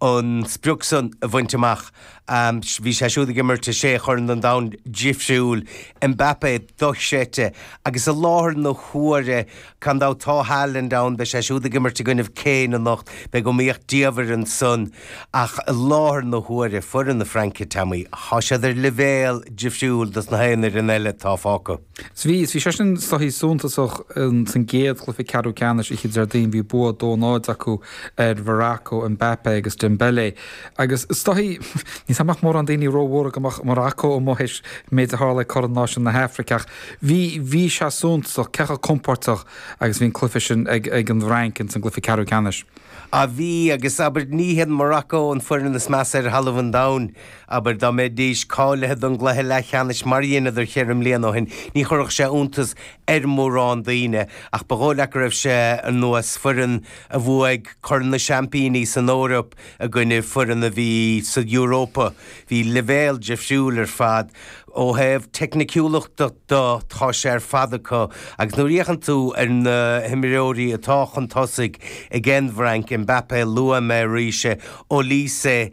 an sprioc san a bhaint amach. Bhí sé siúd ag imirt i sé chorn an domhain difriúil, Mbappé dochreidte agus i láthair na huaire gan dabht tá Haaland ann, beidh sé siúd ag imirt i gcoinnibh Kane anocht, beidh iomaíocht diamhair ansan ach i láthair na huaire, foireann na Fraince, Teaimí, tá siad ar leibhéal difriúil dos na haon fhoireann eile atá fágtha. Is bhí, is bhí sé sin is dóichí suntasach san gcéad chluiche ceathrú ceannais oíche Déardaoin, bhí bua 2-0 acu ar Mharacó Mbappé agus Dembélé agus is dóichí, níl a fhios agam an mbeadh mórán daoine ró-bhuartha go mbeadh Maracó amuigh théis an méid a tharla ag Corn Náisiúin na hAfraice ach bhí, bhí sé suntasach cé chomh compóirteach agus a bhí an cluiche sin ag, ag an bhFrainc ins an gcluiche ceathrú ceannais. Á bhí agus abair ní hiad Maracó an foireann is measa ar thalamh an domhain. Abair dá mbeidís cáilithe don gcluiche leathcheannais mar a dheineadar cheithre mbliana ó shin, ní chuirfeadh sé iontas ar mhórán daoine, ach ba dhóigh leat go raibh sé ar nós foireann a bhuaigh Corn na Seaimpíní san Eoraip i gcoinne foireann a bhí sa Europa. Bhí leibhéal difriúil ar fad. Ó thaobh teicniciúlachta de, tá sé ar fad acu agus nuair a fhéachann tú ar na himreoirí atá chun tosaigh ag an bhFrainc, Mbappé, luaigh mé arís é, Olise,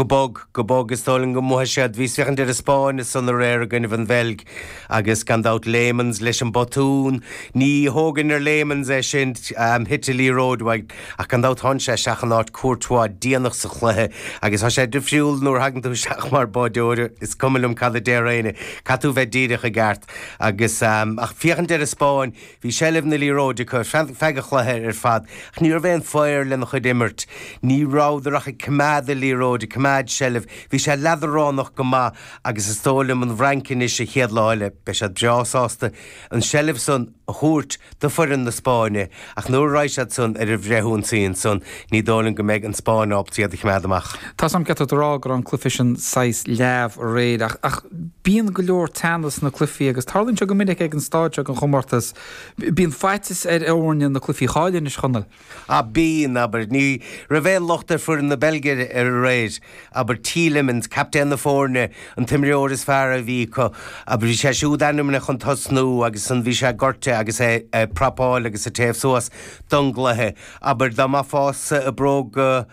Go bog, go bog, is dóigh liom go mbuafaidh siad. Bhíos ag féachaint ar an Spáinn ansan aréir i gcoinnibh an Bheilg agus gan dabht Lammens leis an botún. Ní thógfainn ar Lammens é sin, thit a liathróid uaidh, ach gan dabht tháinig sé isteach in áit Courtois déanach sa chluiche agus tá sé difriúil nuair a thagann tú isteach mar báideoir, is cuma liom cad a déarfaidh éinne, caithfidh tú bheith díreach i gceart. Agus ag féachaint ar an Spáinn, Bhí seilbh na liathróide acu feadh an chluiche ar fad ach ní raibh aon fhaobhar lena chuid imirt. Ní rabhadar ach ag coimeád an liathróid, ag coimeád seilbh. Bhí sé leadránach go maith agus is dóigh liom an bhFrainc anois an chéad lá eile, beidh siad breá sásta an seilbh san a thabhairt do foireann na Spáinne ach nuair a raghaidh siad san ar an bhfrithionsaí ansan Ní dóigh liom go mbeidh an Spáinn ábalta iad a choimeád amach. Tá an ceart agat a rá go raibh an cluiche sin saghas leamh aréir ach, ach bíonn go leor teannas sna cluichí agus tarlaíonn sé go minic ag an stáid seo den chomórtas, bíonn faitíos ar fhoirne na cluichí a chailleadh anois, a Chonaill. Á bíonn, abair. Ní raibh aon locht ar foireann na Beilge aréir. Abair Tielemans, captaen na foirne, an t-imreoir is fearr a bhí acu, abair bhí sé siúd ainmnithe chun tosnú agus an bhí sé gortaithe agus é ag prapáil agus ag téamh suas don gcluiche Abair, dá mbeifeása i mbróga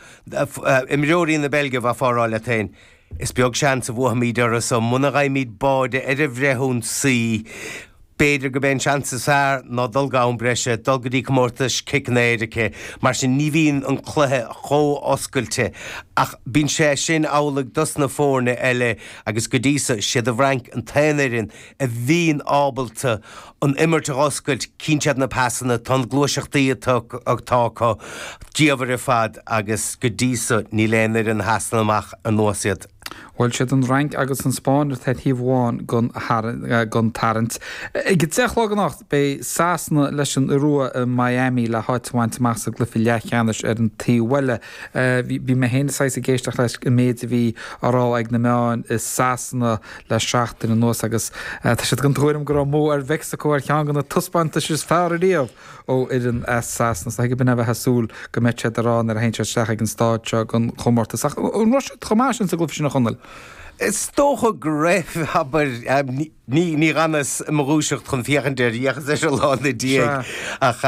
imreoirí na Beilge, bheifeá ag rá leat féin, is beag seans a bhuafaimid orthu so muna bhfaighimid báide ar an bhfrithionsaí. B'fhéidir gurb é an seans is fearr ná dul go ham breise, dul go dtí comórtas ciceanna éirice. Mar sin ní bhíonn an cluiche chomh hoscailte. Ach bíonn sé sin amhlaidh dos na foirne eile agus go dtí so, is iad an bhFrainc an t-aon fhoireann a bhíonn ábalta an imirt a dh'oscailt, chíonn siad na pasanna, tá an ghluaiseacht atá atá acu diamhair ar fad agus go dtí so níl aon fhoireann a sheasann amach ar nós iad. Bhuel, is iad an Fhrainc agus an Spáinn atá ar thaobh amháin den den tarraingt. Ag a deich a chlog anocht beidh Sasana leis an Iorua i Miami le háit a bhaint amach sa gcluiche leathcheannais ar an taobh eile. Bhí mé féin saghas ag éisteacht leis an méid a bhí á rá ag na meáin i Sasana le seachtain anuas agus tá siad den tuairim go raibh a mbua ar Mheicsiceo ar cheann de na taispeántais is fearr riamh ó fhoireann as Sasana. Is dóigh go b'in a bheifeá ag súil go mbeadh siad dhá rá nuair a théann siad isteach ag an stáid seo den chomórtas. Ach an raibh siad chomh maith sin sa gcluiche sin, a Chonaill? Is dócha go raibh, abair. Níor fhanas i mo dhúiseacht chun féachaint air, d'fhéachas leis an lá ina dhiaidh ach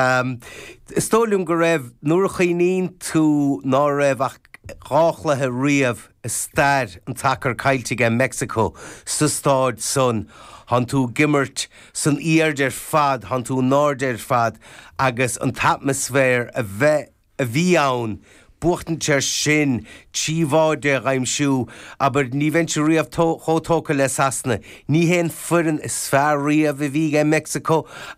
is dóigh liom go raibh, nuair a chuimhníonn tú ná raibh ach dhá chluiche riamh i stair an tsacair caillte aige Mexico sa staid san thánn tú ag imirt san aird ar fad thánn tú in airde ar fad agus an t-atmaisféar a bheith a bhí ann buachtaint ansin trí bháide, a dh'aimsiú abair ní bheinnse riamh tó chomh tógtha le Sasana ní hé an foireann is fearr riamh a bhí aige Mexico ach